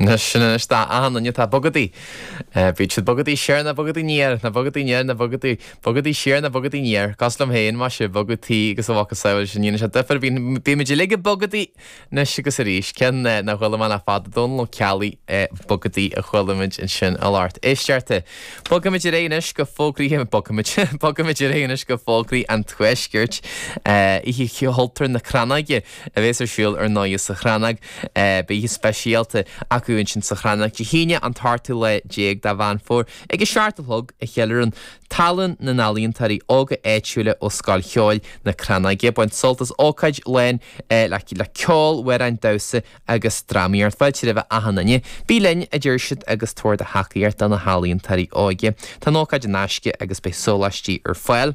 Anois, sin anois d'achan duine atá ag bogadaí. Bíodh siad ag bogadaí siar nó ag bogadaí aniar, nó ag bogadaí aniar nó ag bogadaí, bogadaí siar nó ag bogadaí aniar. Cosúil liom féin, más ea, bogadh tí agus a mhacasamhail, ní dhéanann sé difear. Bíonn, bímid uilig ag bogadaí anois agus arís. Ceann nár chuala muid le fada, Dónal Ó Ceallaigh, bogadaí a chuala muid ansin i lár Tuistearta. Bogfaimid ar aghaidh anois go fógraí, bogfaimid, bogfaimid ar aghaidh anois go fógraí an Tuaiscirt. Oíche Chultúir na Crannóige. a bhéas ar siúl ar ndóighe sa Chrannóg. Beidh oíche speisialta acu ansin sa Chrannóg Dé hAoine an t-ochtú lá déag de Mheán Fómhair ag a seacht a chlog a cheiliúrann tallann na n-ealaíontóirí óga áitiúla ó Scoil Cheoil na Crannóige. Bain sult as ócáid lán le ceol, amhráin, damhsa agus drámaíocht. Fáilte roimh achan duine. Bí linn, a deir siad, agus tabhair do thacaíocht do na healaíontóirí óga. Tá an ócáid in aisce agus beidh sóláistí ar fáil.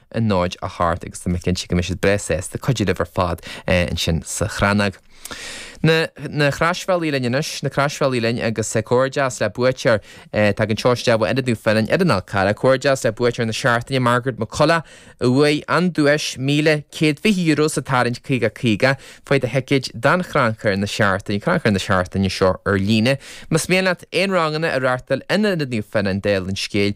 a náid a hocht agus tá mé cinnte go mbeidh siad breá sásta cuidiú libh ar fad ansin sa Chrannóg. Na Croisbhealaí linn anois, na Croisbhealaí linn agus comhghairdeas le buaiteoir tagann seo isteach ó Ionad Naomh Fionnán ar an Fhál Carrach comhghairdeas le buaiteoir na seachtaine, Margaret McCullagh, a bhuaigh an duais €1,120 sa tarraingt 50 50! Faigh do thicéid don Chrannchur na Seachtaine Crannchur na Seachtaine seo ar líne. Más mian leat aon ranganna a reáchtáil in Ionad Naomh Fionnán Deilginis Scéal,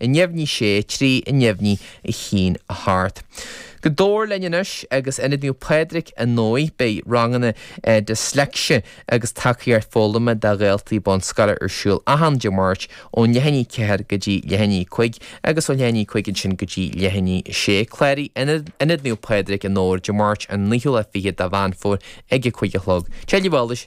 a neamhní, sé, trí, a neamhní, a haon, a hocht. Go Dobhar linn anois, agus Ionad Naomh Pádraig ar ndóigh, beidh ranganna Dysleicse agus tacaíocht foghlama do dhaltaí bunscoile ar siúl achan Dé Máirt ó leath i ndiaidh a ceathair go dtí leath i ndiaidh a cúig agus ó leath i ndiaidh a cúig ansin go dtí leath i ndiaidh a sé. Cláraigh in Ionad Naomh Pádraig i nDobhar Dé Máirt an naoú lá fiche de Mheán Fómhair ag a cúig a chlog. Tuilleadh eolais!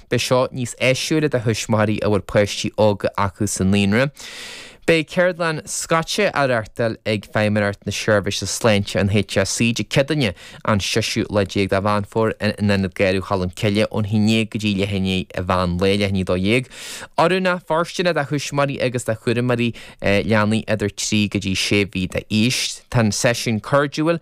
Beidh seo níos áisiúla do thuismitheoirí a bhfuil páistí óga acu sa naíonra. Beidh ceardlann scoite á reáchtáil ag Feidhmeannacht na Seirbhíse Sláinte, an HSE, Dé Céadaoine an seisiú lá déag de Mheán Fómhair in Ionad Garradh Cholm Cille ón haon déag go dtí leath i ndiaidh an mheán lae, leath i ndiaidh dó dhéag. Oiriúnach fóirsteanach do thuismitheoirí agus do chúramóirí leanaí idir trí go dtí sé mhí d'aois. Tá an seisiún cairdiúil,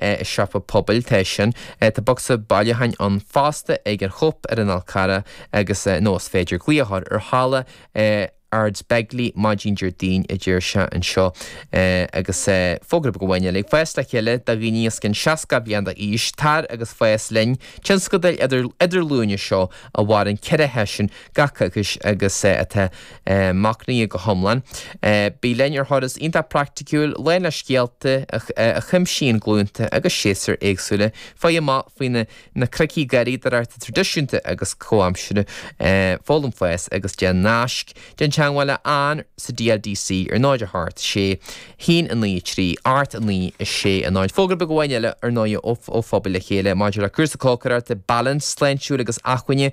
i siopa pobail tá sin. Tá bocsa bailiúcháin ann fosta ag an Chóip ar an Fhál Carrach agus, nó is féidir, glaoch ar Halla Ardsbeg, maidin Déardaoin, a deir sé anseo, agus fógra beag amháin eile. Fás le chéile do dhaoine os cionn 60 bliain d'aois, tar agus fás linn sa tionscadal idir-idirghlúine seo a mhaireann ceithre sheisiún gach coicís agus atá Maoinithe go hiomlán. Bí linn ar thuras iontach praiticiúil, lán le scéalta a chuimsíonn glúnta agus séasúir éagsúla. Faigh amach faoi theicnící garraíodóireachta traidisiúnta agus comhaimseartha, foghlaim fás agus déan naisc, déan teagmháil le Ann sa DLDC ar 0 8 6 1 9 3 8 9 6 0. Fógra beag amháin eile, ar ndóigh, ó Phobal le Chéile maidir le cúrsa cócaireachta, bealach sláintiúil agus inacmhainne.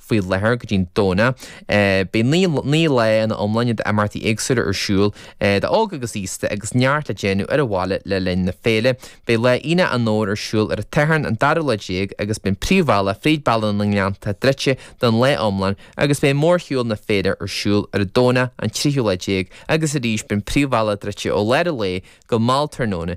faoi láthair go dtí an Domhnach. Beidh naoi lá ina iomláine d'imeachtaí éagsúla ar siúl d'óg agus aosta agus neart le déanamh ar an bhaile le linn na féile. Beidh lá Aonach an Fhómhair ar siúl ar an tSatharn an dara lá déag agus beidh an príomhbhealach fríd Bealach na nGleannta druidte don lá iomlán agus beidh mórshiúl na féile ar siúl ar an Domhnach an tríú lá déag agus arís beidh an príomhbhealach druidte ó lár an lae go mall tráthnóna.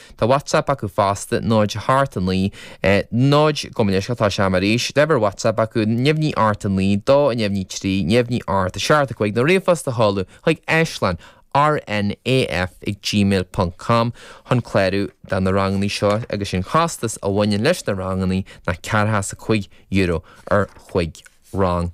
Tá WhatsApp acu fosta, náid a hocht a 9, náid, gabh mo leithscéal, tá sin arís, uimhir WhatsApp acu, neamhní a hocht a 9 a dó a neamhní 3 neamhní a hocht a 7 a 5 nó ríomhphost a sheoladh chuig aislann rnaf ag gmail ponc com chun clárú do na ranganna seo agus an costas a bhaineann leis na ranganna ná ceathracha is €5 ar chúig rang.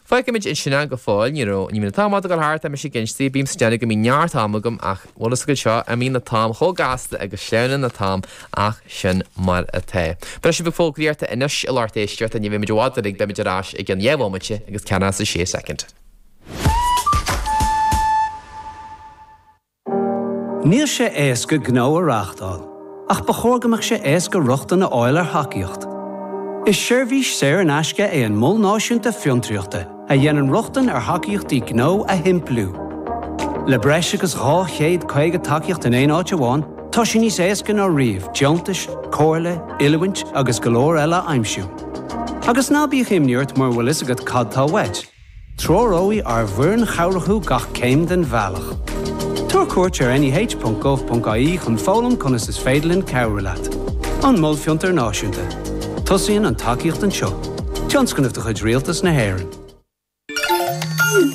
Fágfaimid ansin é go fóill, ní raibh, ní bhíonn an t-am i bhfad ag gabháil thart, tá mise ag inste, bímse ag déanamh go mbíonn neart ama agam ach bhfuil fhios agat seo, imíonn an t-am chomh gasta agus sleamhnaíonn an t-am ach sin mar atá. Beidh sos beag fógraíochta anois a lucht éisteachta ach ní bheimid i bhfad uilig, beimid ar ais i gceann dhé bhomaite agus ceathracha is a sé soicind. Níl sé éasca gnó a reáchtáil, ach ba chóir go mbeadh sé éasca rochtain a fháil ar thacaíocht. Is seirbhís saor in aisce é an Mol Náisiúnta Fiontraíochta a dhéanann rochtain ar thacaíochtaí gnó a shimpliú. Le breis agus 250 tacaíocht in aon áit amháin, tá sé níos éasca ná riamh deontais, comhairle, oiliúint agus go leor eile a aimsiú. Agus ná bíodh imní ort mura bhfuil fhios agat cad tá uait, Treoróidh ár bhfoireann chabhrach thú gach céim den bhealach. Tabhair cuairt ar neh.gov.ie chun foghlaim conas is féidir linn cabhrú leat. An Mol Fiontar Náisiúnta. Tosaíonn an tacaíocht anseo. Tionscnamh de chuid Rialtas na hÉireann.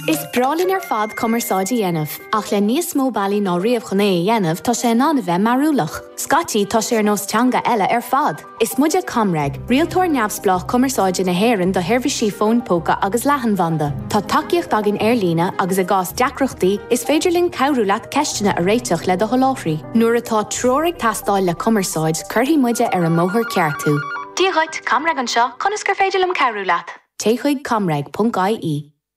Is breá linn ar fad cumarsáid a dhéanamh, ach le níos mó bealaí ná riamh chun é a dhéanamh, tá sé in ann a bheith mearúlach. Scaití, tá sé ar nós teanga eile ar fad! Is muide ComReg, rialtóir neamhspleách cumarsáide na hÉireann do sheirbhísí fóin póca agus leathanbhanda. Tá tacaíocht againn ar líne agus i gcás deacrachtaí, is féidir linn cabhrú leat ceisteanna a réiteach le do sholáthraí. Nuair atá treoir ag teastáil le cumarsáid, cuirfidh muide ar an mbóthar ceart thú. Dia dhuit, ComReg anseo, conas gur féidir liom cabhrú leat? Téigh chuig comreg.ie.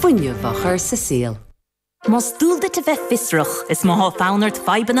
fuinneamh a chur sa saol. Más dual duit a bheith fiosrach, is má thá fonn ort fadhbanna